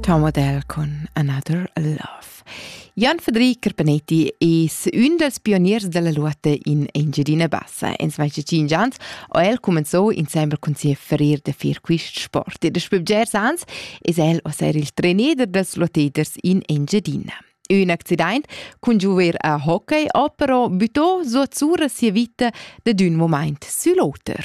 Tom Adele con Another Love. Jan Federic Carpanetti es ün dels pioniers della lotta in Engiadina Bassa. In svece cinc ans ho el comenzou insembel cun sia ferir de fir quist sport e daspö bgers ans es el a ser il trainer dels lotteders in Engiadina. Ün accidaint cun giuver a hockey ho però büttò suot sura sia vita dad ün moment sül oter.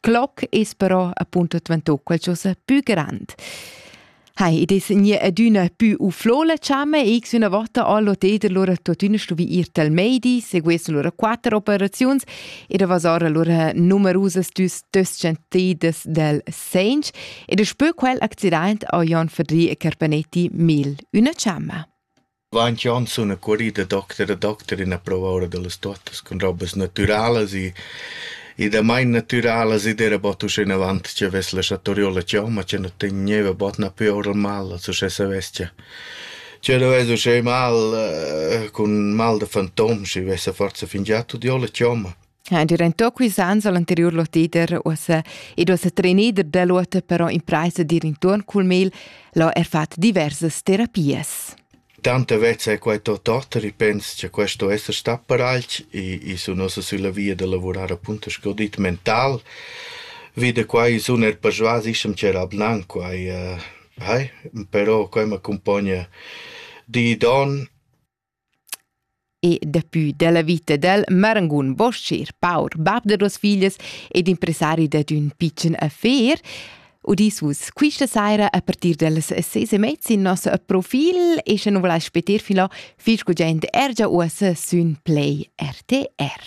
Cloc es però appunto dvantò qualchosa pü grand. Hai, id es gnü adüna pü uflò la chamma e x üna vota ho l'hotel allura tuottüna stuvü ir tal meidi, seguessen lura quatter operaziuns ed avasor allura numerusas düs duos scientidas del segns ed spö quel accident ho Jon Fadri e Carpanetti mil üna chamma. Vant Johnson ha currì da docter a docter üna prova oura da las tuottas cun robas natüralas e e damain natüralas ed era bod uschenavant chi avess laschà Toriola giò, ma chi nu tegneva bod na pü oura mal als uschè savess cha chi nu vess uschè mal cun mal da fantom, schi vessa forsa fingià tuot giò la chomma. Ha diventou quis ans l'anteriur lotider uossa ed uossa trenider dall'ota però impraisa dir intuorn cul mel l'ho er fat diversas terapias. Tanta vezza è quai tot oter, i pens che questo esser sta paralch e, e sun ossa sulla via da lavorar appunto sco dit mental. Vide quai sun er persuas ischem c'era abnan quai. Uh, hai, però quai m'accompagna di don E daplü dalla vita dal marangun bos-cher paur bab da duos figlias ed impresari dad ün pitschen affer udis vus quista saira a partir dallas ses e mezza in nos profil e sche nu volais speter filò fich cul jent er già uossa sün Play RTR.